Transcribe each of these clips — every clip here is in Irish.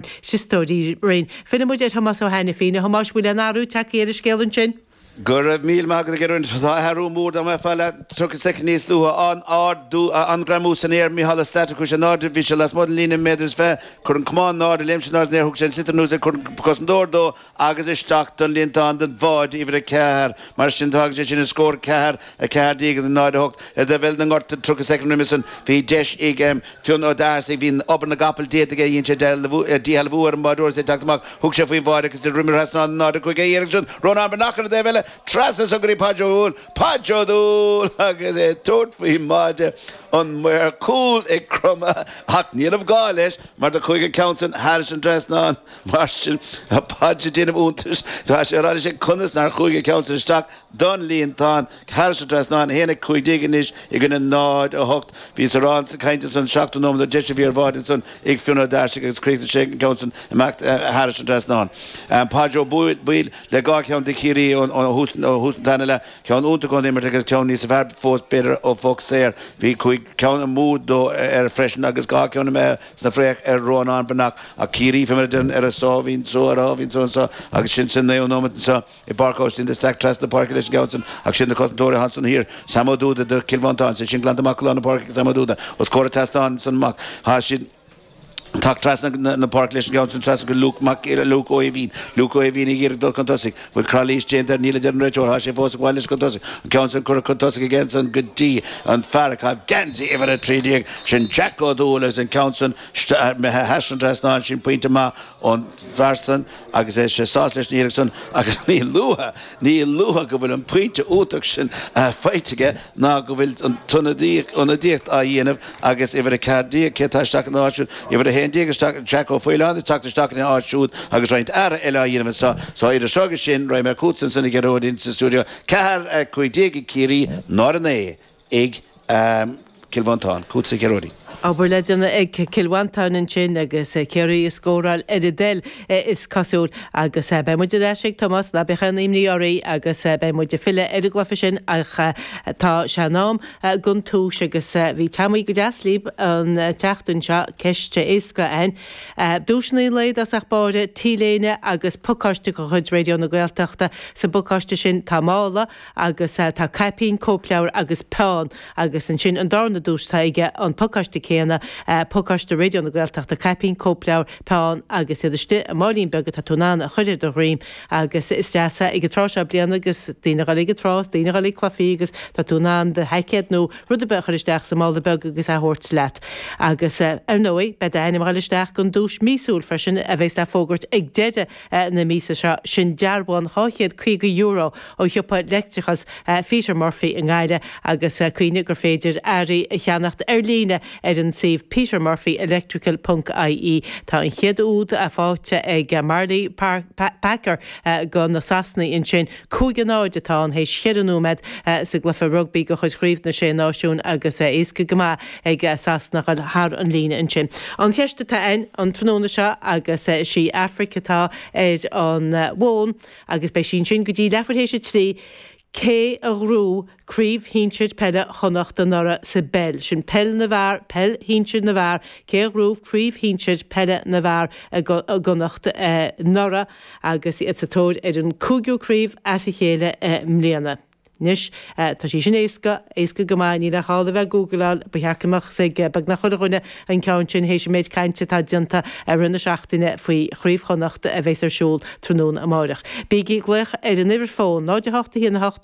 A éisteoirí. Filleann muid ar Thomás Ó hAinifín. A Thomáis, an bhfuil aon athrú tagtha ar an scéal ansin? Go raibh míle maith agat a Ghearóid. Tá athrú mór, dá mbeifeá leath tríocha soicind níos luaithe, an-ard, dú, a, an greamú san aer, Micheál Ó Sé, tá, a chuir sé in airde, bhí sé lasmuigh den líne méadar is fiche, chuir an camán in airde, léim sé in airde san aer, thug sé an sliotar anuas ag, chuir an cosantóir de, agus isteach don líontán don bháide uimhir a ceathair. Mar sin, fágann sé sin an scór ceathair a, 14 i gcoinne 0, 8. Ardaíomh ar na glórtha tríocha soicind roimhe san, bhí deis ag Fionn Ó Dorsaigh, bhí obair na gcapall déanta aige, dhein sé an duel a bhuachan ar an mbáireoir is é ag teacht amach, thug sé faoin mbáide agus de dhroim thrasnáin an 0, 5 a iarraidh ansin, Rónán Breathnach ar an dtaobh eile, trasna san go dtí Páidí Ó Baoill, Páidí Ó Baoill agus é ag tabhairt faoin mbáide, an maor cúil ag cromadh ach ní raibh gá leis mar do chuaigh an ceann san thar an trasnán, Mar sin, tá Páidí ag déanamh iontais de conas nár chuaigh an ceann san isteach don líontán. Thairis an trasnán 1, 15 anois i gcoinne 08. Bhíos-sa sa chaint ansan seachtú nóiméad, deis a bhí ar bháide ansan ag Fionn Ó Dorsaigh agus chríochnaigh sé an ceann san amach thar an trasnán. Páidí Ó Baoill le dhá cheann do Chiarraí ó thús an tarna leath. Ceann iontach ón imirt agus ceann níos fearr fós b'fhéidir ó Phoc Saor. Bhí cúig cinn amú dó freisin agus dhá cheann Sna freeanna Rónán Breathnach Ach Ciarraí fé mar a deireann ar a sáimhín só, ar a sáimhín só anseo agus sin sa naoú nóiméad anseo i bPáirc Óistín de Staic trasna na páirce leis an gceann san ach is iad na cosantóirí a tháinig san thiar Sam Ó Dúda do Chill Mhantáin, sin glanta amach go lár na páirce ag Sam Ó Dúda os comhair an ardáin san amach, tá sé ag teacht trasna na páirce leis an gceann san trasna go Luke Ó hUigínn Luke Ó hUigínn ag iarraidh dul chun tosaigh Bhfuil calaois déanta air? Níl a deir an réiteoir. Tá sé fós ag gabháil leis chun tosaigh. An ceann sin curtha chun tosaigh aige ansan go dtí an fear ag caitheamh geansaí uimhir a trí déag, sin Jack Ó Dúill agus an ceann san imithe thar an trasnán, sin pointe maith ón bhfear san agus tá sé sásta leis an iarracht san agus ní luaithe, ní luaithe go bhfuil an pointe iontach sin faighte aige. ná go bhfuil an ionadaíocht á déanamh agus uimhir 4 déag cé atá isteach in áit siúd, uimhir 11 déag Jack Ó Faoláin ag teacht isteach in áit siúd agus roinnt athrú eile á dhéanamh anseo. Sa iris seo agus sin, raghaidh mé chugat ansan a Ghearóid sa stiúideo 4, 15 déag ag Ciarraí, Náid 9 ag Cill Mhantáin. Chugatsa a Ghearóid. Obair le déanamh ag Cill Mhantáin ansin agus Ciarraí ag scóráil ar a dtoil is cosúil agus beidh muid ar ais ag Tomás ná bíodh aon imní oraibh agus beidh muid ag filleadh ar an gcluiche sin ach tá sé in am gan tomhais agus bhí, tá muid go deas libh an tseachtain seo ceist éasca ann duaiseanna le dhul thar barr, T-léine agus pacáiste de chuid Raidió na Gaeltachta. Sa bpacáiste sin tá mála. agus tá caipín, cóipleabhar agus peann agus ansin an darna duais tá aige an pacáiste céanna, pacáiste Raidió na Gaeltachta, caipín, cóipleabhar, peann agus iad istigh i máilín beag atá tú in ann a chuir ar do dhroim agus is deas é ag an tráth seo bliana agus daoine ag dul ag an trá is daoine ag dul ag cluifí agus tá tú in ann do sheaicéad nó rud ar bith a chuir isteach sa mála beag agus é a thabhairt leat agus ar ndóigh beidh d'ainm ag dul isteach don duais míosúil freisin a bhéas le fógairt ag deireadh na míosa seo, sin dearbhán €250 ó shiopa leictreachas Pheter Murphy i nGaillimh agus cuimhnigh gur féidir earraí a cheannacht ar líne ar an suíomh petermurphyelectrical ponc ie. Tá an chéad úd fáighte ag Marley Packer do na Sasanaigh ansin. Cúig a náid atá ann théis cheithre nóiméad sa gcluiche rugbaí de chuid Chraobh na Sé Náisiún agus éasca go maith ag Sasana a chur thar an líne ansin. An cheist atá ann an tráthnóna seo agus is í Aifric atá ar an bhfón agus beidh sí ansin go dtí leathuair théis a trí, cé a ghnóthaigh Craobh Shinsir Peile Chonnacht anuraidh sa bpeil. Sin peil na bhfear, peil shinsir na bhfear. Cé a ghnóthaigh Craobh Shinsir Peile na bhfear i gConnacht anuraidh agus iad sa tóir ar an cúigiú craobh as a chéile i mbliana? Anois, tá sé sin éasca, éasca go maith. Níl agat ach a bheith ag googleáil. Ba cheart go mbeadh a fhios ag beagnach chuile dhuine an ceann sin théis an méid cainte atá déanta i rith na seachtaine faoi Chraobh Chonnacht a bheas ar siúl tráthnóna amáireach. Bígí ag glaoch ar an uimhir fón, 08 1 8.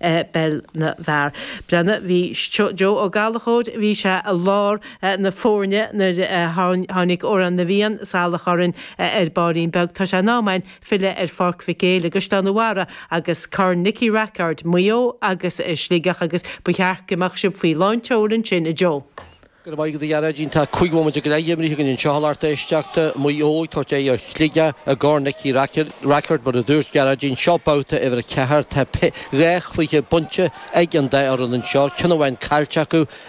Peil na bhfear. blianta ó bhí Joe Ó Gallachóir, bhí sé i lár na foirne nuair a tháinig Amhrán na bhFiann salach orainn ar bairín beag. Tá sé in am againn filleadh ar Pháirc Mhic Éil i gCaisleán an Bharraigh agus Corn Nicky Rackard, Maigh Eo agus Sligeach agus ba cheart go mbeadh sibh faoi lán tseoil ansin, a Joe. Go raibh maith agat a Ghearáidín. Tá cúig mhóimint go leith imrithe againn anseo a lucht éisteachta, Maigh Eo ag tabhairt aghaidh ar Shligeach i gCorn Nicky Rackard, Rackard, mar a dúirt Gearáidín. Seo babhta uimhir a ceathair. Tá dhá chluiche bainte ag an dá fhoireann anseo, ceann amháin caillte acu